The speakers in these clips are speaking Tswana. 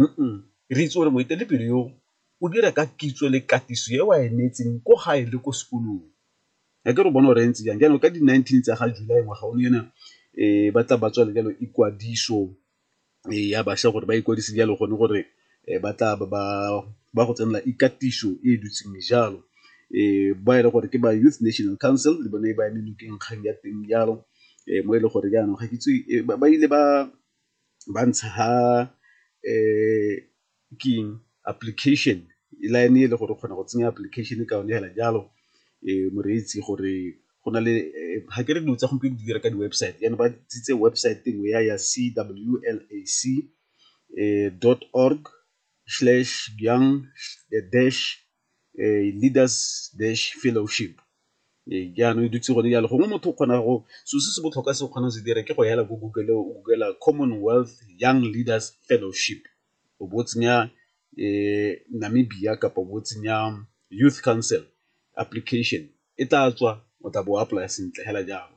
Uum, re itse gore moetelepele yo o dira ka kitso le katiso e wa e neetseng ko gae le ko sekolong. A ke re o bona gore e ntse jang. Jaanong ka di-nineteen tsa ga July ngwaga o ne ena um ba tla ba tswa le jalo ikwadiso ya bašwa gore ba ikwadise jalo gone gore ba tla ba go tsenela ikatiso e e dutseng jalo. Um ba e le gore ke ba Youth National Council le bone ba eme nokeng kgang ya teng jalo, mo e le gore jaanong ga ke itse ba ile ba ba ntsha ha ke eng application line e le gore o kgona go tsenya application ka yone hela jalo moreetsi gore go na le ga ke re dilo tsa gompieno di dira ka di-website jaanong ba tsitse website engwe ya ya c w l a c dot org slash young dash eh, leaders dash fellowship ee eh, jaanong e dutse gone jalo gongwe motho o kgona go so se se botlhokwa se o kgona go se dira ke go hela ko google o googela commonwealth young leaders fellowship o bo tsenya um namibia kapa bo tsenya youth council application e tla tswa o tla bo apply sentle hela jalo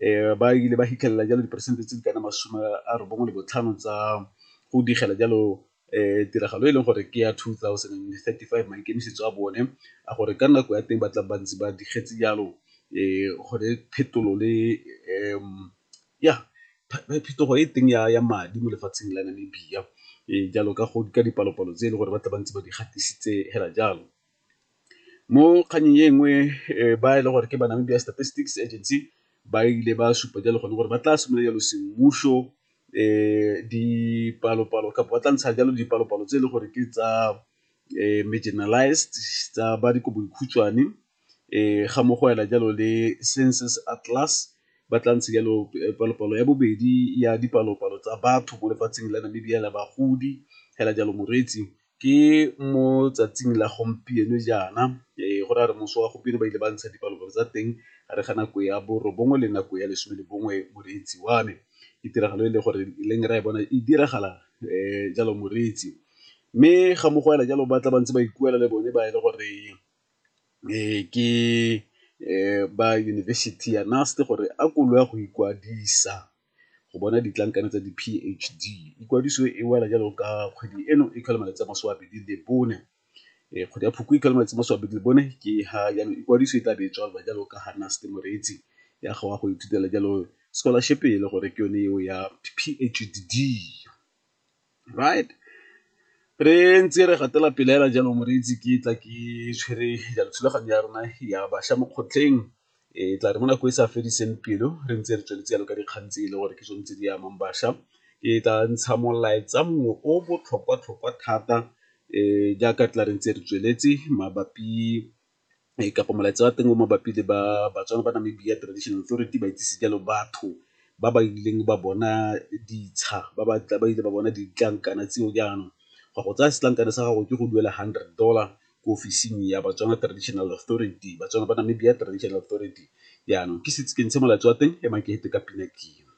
eh, ba ile ba hitlhelela jalo diperesente tse di kana masome a robongwe le botlhano tsa go digela jalo um tiragalo e leng gore ke ya two thousand and thirty five maikemisetso a bone a gore ka nako ya teng ba tla bantsi ba digetse jalo um gore phetolo le um ya phetogo e teng ya ya madi mo lefatsheng la namibia um jalo ka go ka dipalopalo tse e le gore ba tla bantse ba di gatisitse hela jalo Mo kgannyeng e nngwe ba e le gore ke ba Namibia Statistics Agency ba ile ba supa jalo gone gore ba tla simolola jalo semmuso dipalopalo kapa ba tla ntsha jalo dipalopalo tse e le gore ke tsa marginalized tsa ba dikobodikhutshwane ga mo go ela jalo le Census Atlas ba tla ntsha jalo palopalo ya bobedi ya dipalopalo tsa batho mo lefatsheng la Namibia la bagodi hela jalo moreetsi ke mo tsatsing la gompieno jaana go ra re moso wa gompieno ba ile ba ntsha dipalopalo tsa teng a re ga nako ya borobongwe le nako ya lesome le bongwe moreetsi wa me ke tiragalo e le gore e leng ra e bona e diragala um jalo moreetsi mme ga mo go ela jalo ba tla ba ntse ba ikuela le bone ba e le gore um ke um ba university ya NUST gore a ko lo ya go ikwadisa. go bona ditlankana tsa di-PHD. Ikwadiso e wela jalo ka kgwedi eno e tlhola malatsi a masome a bedi le bone. Eh, kgwedi ya phoko e tlhola malatsi a masome a bedi le bone ke ha jaanong ikwadiso e tla be e tswalelwa jalo ka ga Naste Moreetsi ya go ya go ithutela jalo scholarship e le gore ke yone eo ya PHD. right re ntse re gatela pele fela jalo moreetsi ke tla ke tshwere jalo thulaganyo ya rona ya bašwa mo kgotleng e tla re mo nako e sa fediseng pelo re ntse re tsweletse jalo ka dikgang tse e le gore ke tsone tse di amang bašwa ke tla ntsha molaetsa mongwe o botlhokwa-tlhokwa thata um jaaka tla re ntse re tsweletse mabapi ee ka gore molaetsa wa teng o mabapi le baTswana ba Namibia Traditional Authority ba itsise jalo batho ba ba ileng ba bona ditsha ba ba ile ba bona ditlankana tseo jaanong go ya go tsaya setlankana sa gago ke go duela hundred dollar ko ofising ya baTswana Traditional Authority, baTswana ba Namibia Traditional Authority jaanong ke setse ke ntshe molaetsa wa teng emang ke fete ka pina ke eo.